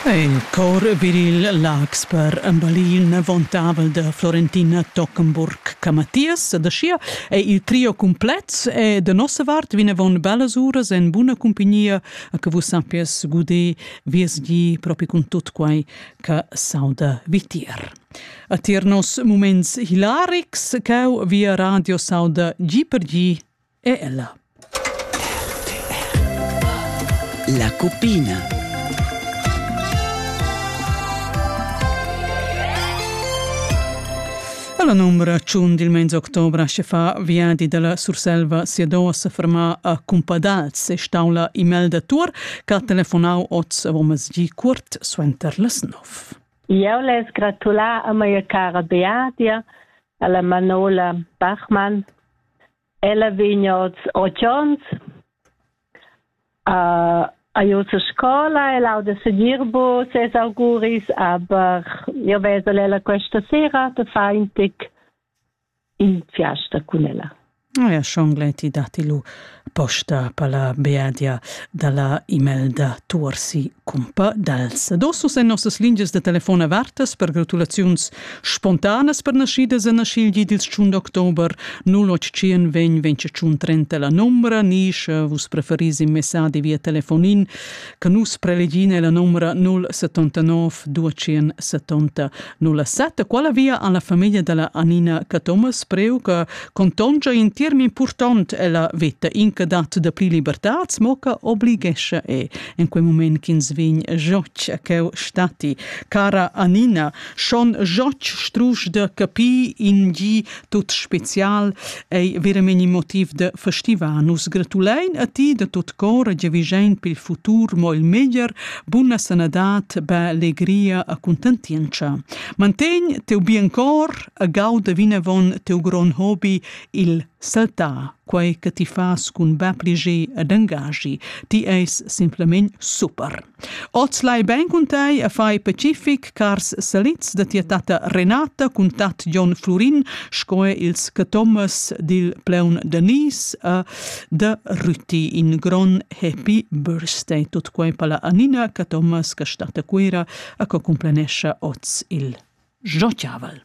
Il chor viril Laax per emballir l'inventavel da Florentina Tockenburg Camathias da Schia è il trio cumplet e da nossa vart vinavon bellas uras en buna cumpagnia a che vus sappies guder vies gi propi cun tut quai che sauda vitier. A tier nos muments hilarics cau via radio sauda gi per gi è ella. La cuppina. La numra 1 del mens octobre che fa viadi dalla Surselva Siedosa ferma a Cumpadals e staula email da Tur che ha telefonau oz avon masgi curt suenter las 9. Eu les gratular a mia cara Beatia, alla Manola Bachmann Ella vegn oz otg onns, uh, ha giu sa scola, el auda segir bu ses auguris, aber io vesel ella questa sera da fa in tic in fiasta cun ella. Oh ja, schon gleiti dati lu posta pala beadia dalla Imelda Tuorsi cumpa dals. Adosso sen nossas lingias de telefon avertas per gratulaziuns Spontanas pernaschidas en aschigl di dils tschun d'october 0821 la numbra ni sche vus preferis in messadi via telefonin che nus prelegin la numbra 079 270 07 quala via alla famiglia della Anina Cathomas preu che contongia in term important ella veta inca dat da pli libertats mo che oblighescia e en quei moment ch'ins vegn joc a cheu stati cara Anina Schon jotg strusch da capir in gi tut special ei veramente motiv da festivar. Nus gratulein a ti da tot cor e giavischein per il futur mo il meglier, buna sanadad, bella alegria e contentientscha. Mantegn teu bien cor e gauda vinavon teu grond hobby, il saltar, quei che ti fas cun bab liger ed angagi. Ti eis simplement super. Oz lai bein cun tei e fai pacific, cars salits da tia tatta Renata cun tat Jon Flurin sco er ils catommas dil Pleun Danis e da Rüti in gron happy birthday tut quei palla Anina catommas che stat a Cuera e che cumplenescha oz il Jochavel.